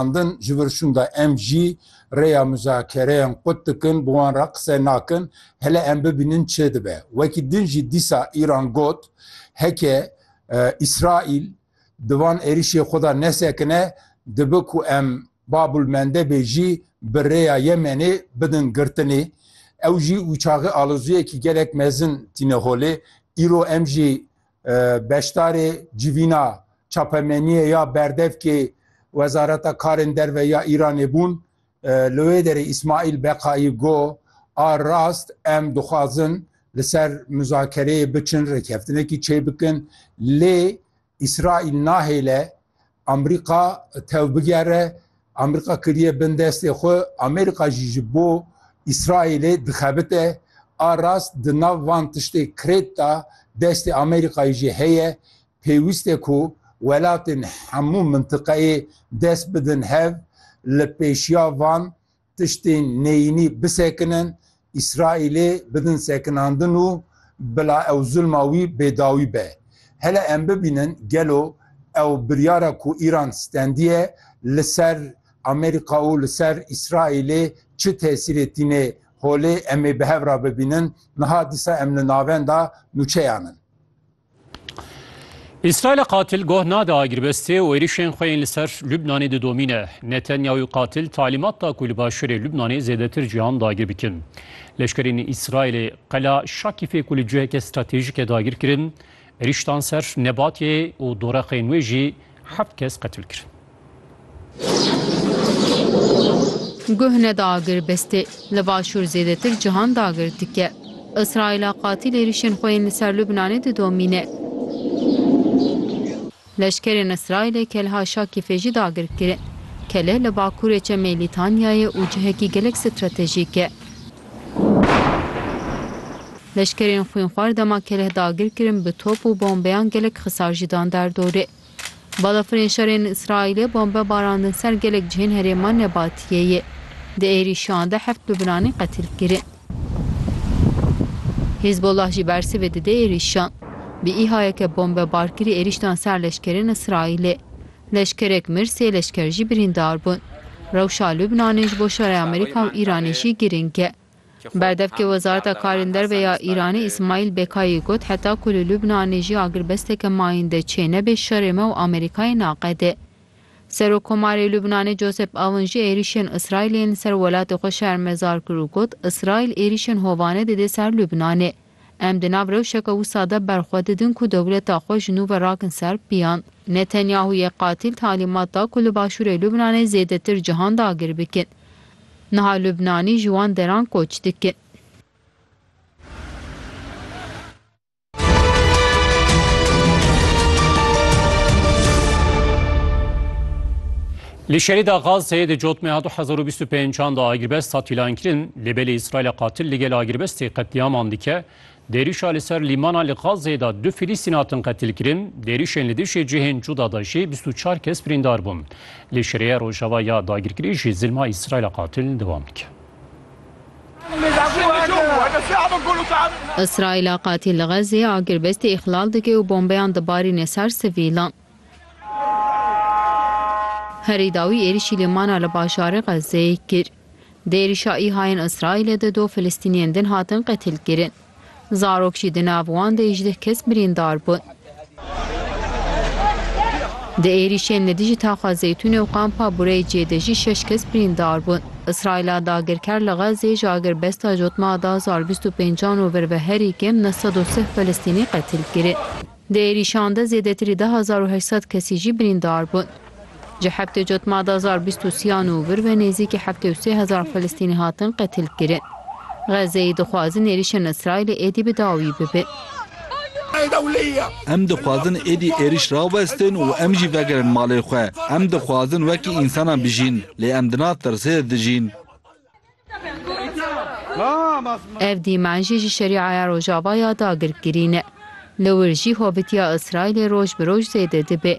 Xwendin ji vir şûnda em jî rêya muzakereyan qut dikin, bi wan re qise nakin, hele em bibînin çê dibe. Wekî din jî dîsa Îran got, heke Îsraîl di van êrîşê xwe de nesekine, dibe ku em Bab ul Mendebê jî bi rêya Yemenê bidin girtinê. Ew jî ûçaxê aloziyekî gelek mezin tîne holê. Îro em jî Beşdarê civîna çapemeniyê ya berdevkê Wezareta Karên Derve ya Îranê bûn. Li wê derê Îsmaîl Beqayî got, A rast em dixwazin li ser muzakereyê biçin, rêkeftinekî çêbikin lê Îsraîl nahêle Amerîka tev bigere, Amerîka kiriye bin destê xwe, Amerîka jî ji bo Îsraîlê dixebite. A rast di nav van tiştê krêt da destê Amerîkayê jî heye. Pêwîst e ku welatên hemû mintiqeyê dest bidin hev, li pêşiya van Tiştên neyînî bisekinin, Îsraîlê bidin sekinandin û bila ew zulma wî bêdawî be. Hele em bibînin gelo ew biryara ku Îran stendiye li ser Amerîka û li ser Îsraîlê çi tesîrê tîne holê em ê bi hev re bibînin. Niha dîsa em li navenda nûçeyan in. Îsraîlê qatil goh nade agirbestê û êrişên xwe yên li ser Lubnanê didomîne. Netanyahû qatil talîmat da ku li başûrê Lubnanê zêdetir cîhan dagir bikin. Leşkerên Îsraîlê qela Şakîfê ku li ciheke stratejîke dagir kirin, êriştan ser Nebatiyê û doreqên wê jî Heft kes qetil kirin. Guh ne dagir bestê. Li başûr zêdetir cihan dagir dike. Îsraîla qatîl êrîşên xwe yên li ser Lubnanê didomîne. Leşkerên Îsraîlê Kelha Şakîfê jî dagir kirin. Kele li bakurê çemê Lîtanyayê û cihekî gelek stratejîk e. Leşkerên xwînxwar dema keleh dagir kirin bi top û bombeyan gelek xisar jî dan der dorê. Balafirên şerên Îsraîlê bombe barandin ser gelek cihên herêma Nebatiyeyê. Di êrîşiyan de heft bibinanî qetil kirin. Hîzbullah jî bersivê dide êrîşan. Bi îhayeke bombebarkirî êrîş dan ser leşkerên Îsraîlê. Leşkerek mir, sê leşker jî birîndar bûn. Rewşa Lubnanê ji bo şerê Amerîka û Îranê jî girîng e. Berdevkê Wezareta Karên Derve ya Îranê Îsmaîl Bekayî got heta ku li Lubnanê jî agirbesteke mayînde çênebe şerê me û Amerîkayê naqede. Serokkomarê Lubnanê Josep Aoun jî êrîşên Îsraîlê yên li ser welatê xwe şermezar kir û got, Îsraîl êrîşên hovane dide ser Lubnanê. Em di nav rewşeke wisa de ber xwe didin ku dewleta xwe ji nû ve rakin ser piyan. Netanyahûyê qatîl talîmat da ku li başûrê Lubnanê zêdetir cihan dagir bikin. Niha Lubnanî ji wan deran koç dikin. Li şerîda Gazeyê di cot Meha du hezar û bîst û pênc an de agirbest hat îlankirin, lê belê Îsraîla qatil li gel agirbestê qetlîaman dike. Dêrîşa li ser lîmana li Gazeyê de du Filîstîn hatin qetilkirin, dêrîşên li dijî cihên cuda de jî bîst û çar kes birîndar bûn. Li şerîya Rojava ya dagirkirî jî zilma Îsraîla qatil dewam dike. Îsraîla qatil li Gazeyê agirbestê îxlal dike û bombeyan dibarîne ser sivîlan. Herî dawî êrîşî lîmana li bajarê Xezzeyê kir. Di êrîşa îhayên Îsraîlê de du Filistîniyên din hatin qetilkirin. Zarok jî di nav wan de hîjdeh kes birîndar bûn. Di êrîşên li dijî Taxa Zeytûnê û Kampa Bureyê cê de jî şeş kes birîndar bûn. Îsraîla dagirker li Xezzeyê ji agirbesta jotma da zar bîst û pêncan û vir ve herî kêm neh sed û sih Filistînî qetilkirin. Di êrîşan de zêdetirî du hezar û heşt sed kesî jî birîndar bûn. Ji heftê cotma du hezar bîst û sî an û vir ve nêzîkî heftê û sê hezar Filistînî hatin qetilkirin. Xezzeyî dixwazin êrîşên Îsraîlê êdî bi dawî bibe. Em dixwazin êdî êrîş rawestin û em jî vegerin malê xwe. Em dixwazin wekî însanan bijîn, lê em di nav tirsê de dijîn. Ev dîmen jî ji Şerîaya Rojava ya dagirkirî ne. Li wir jî hovitiya Îsraîlê roj bi roj zêde dibe.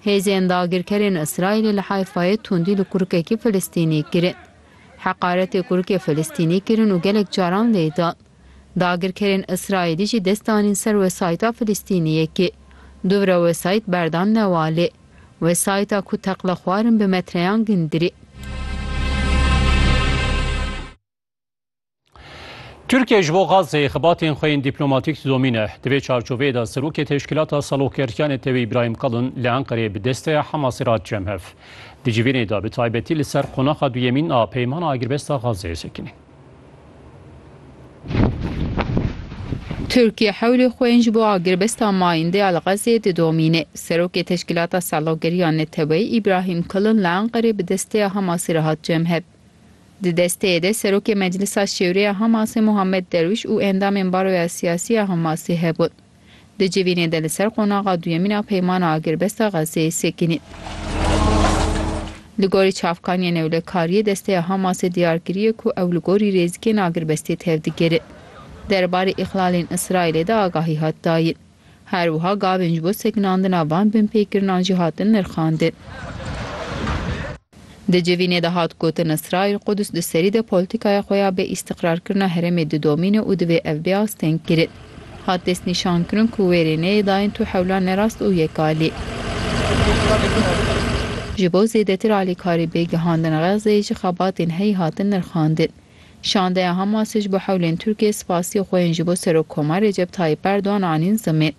Hêzên dagirkerên Îsraîlê li Hayfayê tundî li kurikekî Filistînî kirin. Heqaretê kurikê Filistînî kirin û gelek caran lê dan. Dagirkerên Îsraîlî jî dest danîn ser wesayîta Filistîniyekê. Dûvre wesayît berdan newalê. Wesayîta ku teqla xwar in bi metreyan gindirî. Tirkiye ji bo Gazeyê xibatên xwe yên dîplomatîk didomîne. Di vê çarçoveyê de Serokê Teşkîlata Saloqgertiyan Netewî Îbrahîm Kalin li Enqereyê bi desteya Hemasê re hat cem hev. Di civînê de bi taybetî li ser qonaxa duyemîn a peymana agirbesta Gazeyê sekinîn. Tirkiye hewlê xwe yên ji bo agirbesta mayîndê ya li Xezê didomîne. Serokê Teşkîlata Salogeriya Neteweyî Îbrahîm Kilin li Enqerê bi desteya Hamasê re hat cemhev. Di desteyê de Serokê Meclisa Şêwreya Hamasê Muhammed Derwîş û endamên Baroya Siyasî ya Hamasê hebûn. Di civînê de li ser qonaxa duyemîn a Peymana Agirbesta Xezzeyê sekinî. Li gorî çavkaniyên ewlekariyê desteya Hamasê diyar kiriye ku ew li gorî rêzikên agirbestiyê tevdigirin. Derbarê îxlalên Îsraîlê de agahî hat dayin. Her wiha gavên ji bo sekinandina van binpêkirinan jî hatin nirxandin. Di civînê de hat gotin Îsraîl Qudus di serî de poltîkaya xwe ya bê îstîqrarkirina herêmê didomîne û divê ev bê astengkirin. Hat destnîşankirin ku wêrê neyê dayîn tu hewla nerast û yek alî. Ji bo zêdetir alîkarî bê gihandin Xezzeyê jî xebatên heyî hatin nirxandin. Şandeya Hamasê ji bo hewlên Tirkiyeyê spasîyê xwe yên ji bo Serokkoma Recep Tayîp Erdogan anîn zimên.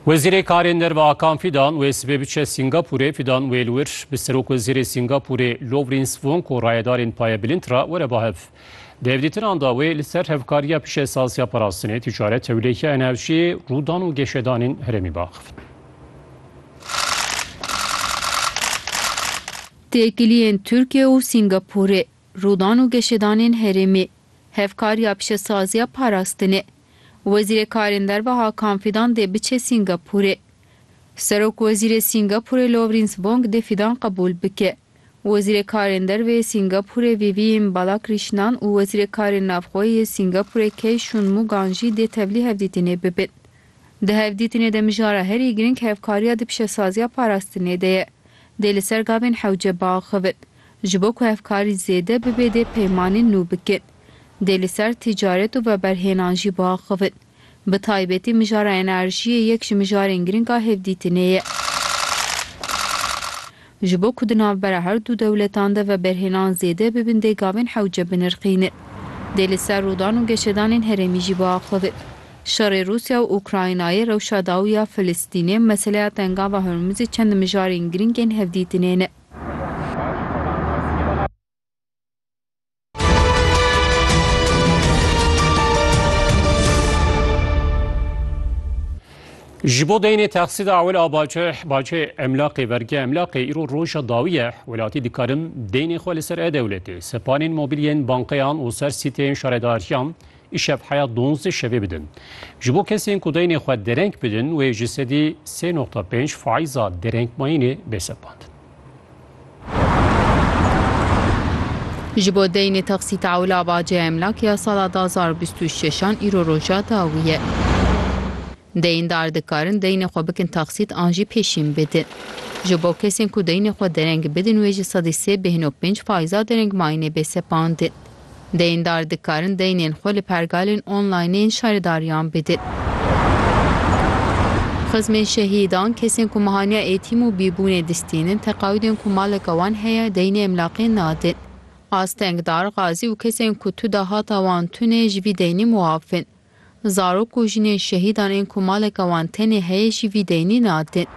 Wezîrê Karên Derve Akan Fidan wê sibê biçe Sîngapûrê Fidan wê li wir bi Serok Wezîrê Sîngapûrê Lowrîn Svonk û rayedarên payebilind re were ba hev. Di hevdîtinan de wê li ser hevkariya pişesaziya parastinê, tîcaret, tewlêhiya enerjiyê, rûdan û geşedanên herêmî biaxivin. Têkiliyên Tirkiye û Sîngapûrê, rûdan û geşedanên herêmî, hevkariya pişesaziya parastinê, Wezîrê Karên Derve Hakan Fidan dê biçe Sîngapûrê. Serokwezîrê Sîngapûrê Lawrence Wong dê Fidan qebûl bike. Wezîrê Karên Derve yê Sîngapûrê Vivienne Balakrîşnan û Wezîrê Karên Navxwe yê Sîngapûrê Key Shun Mugan jî dê tevlî hevdîtinê bibin. Di hevdîtinê de mijara herî giring hevkariya di pişesaziya parastinê de ye. Dê li ser gavên hewce biaxivin. Ji bo ku hevkarî zêde bibe dê peymanên nû bikin. dê li ser ticaret û veberhênan jî biaxivin. Bi taybetî mijara enerjiyê yek ji mijarên girîng a hevdîtinê ye. Ji bo ku di navbera her du dewletan de veberhênan zêde bibin dê gavên hewce binirxînin. Dê li ser rûdan û geşedanên herêmî jî biaxivin. Şerê Rûsya û Ukraynayê, rewşa dawî ya Filistînê, meseleya Tengava Hormuzê çend mijarên girîng ên hevdîtinê ne. Ji bo deynê texsî da ewil a baceh, bacê emlaqê vergiya emlaqê îro roja dawî ye. Welatî dikarin deynê xwe li ser e dewletê, sepanên mobîlyên bankeyan û ser sîteyên şaredariyan îşev heya donzdeh şevê bidin. Ji bo kesên ku deynê xwe dereng bidin wê ji sedî sê noqta pênc faîza derengmayînê bê sepandin. Ji bo deynê taksî taula baca emlak ya sala du hezar û bîst û şeş an îro roja dawî ye. Deyndar dikarin deynê xwe bikin taksît an jî pêşîn bidin. Ji bo kesên ku deynê xwe dereng bidin wê ji sedî sê bêhno pênc faiza derengmayînê bê sepandin. Deyndar dikarin deynên xwe li pergalên online yên şaredariyan bidin. Xizmên şehîdan, kesên ku mehaniya êtîm û bîbûnê distînin, teqawîdên ku maleka wan heye, deynê emlaqê nadin. Astengdar, Gazî û kesên ku tu dahata wan tune ji vî deynî muaf in. Zarok û jinên şehîdan ên ku maleka wan tenê heye jî vî deynî nadin.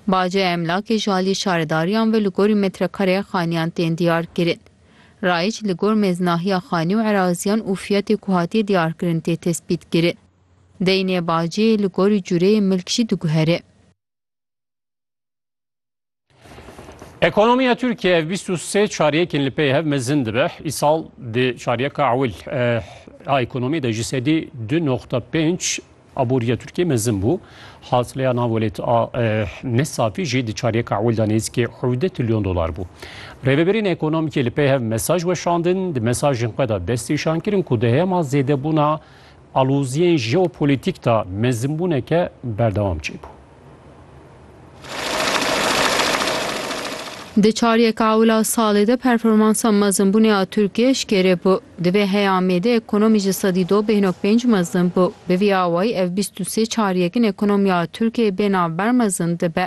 Baca emlakê ji aliyê şaredariyan ve li gorî metrekareye xaniyan tên diyar kirin. Rayîç li gor mêznahiya xanî û eraziyan û fiyatê ku hatiye diyarkirin tê tespîtkiri. Deynê baciyê li gorî cureyê milk jî diguhere. Ekonomiya Tirkiyê ev bîst û sê çaryekên li pey hev mezin dibe. Îsal di çaryeka ewil a ekonomiyê de ji sedî du noqta pênc Aboriya Tirkiyê mezin bû. Hasıleya nav welêt a Nesafî jî di çariyeka ewil de nêzîkê hewdeh tilyon dolar bû. Rêveberên ekonomîkê li pey hev mesaj weşandin, di mesajên xwe de destnîşan kirin ku di hema zêdebûna aloziyên jeopolitîk de mezinbûneke berdewam çêbû. Di çar yeka ûla salê de performansa mezinbûnê a Tirkiyê eşkere bû. Di vê heyamê de ekonomî ji sedî du bê nok pênc mezin bû. Bi vî awayî ev bîst û sê çar yekin ekonomiya Tirkiyê bê navber mezin dibe.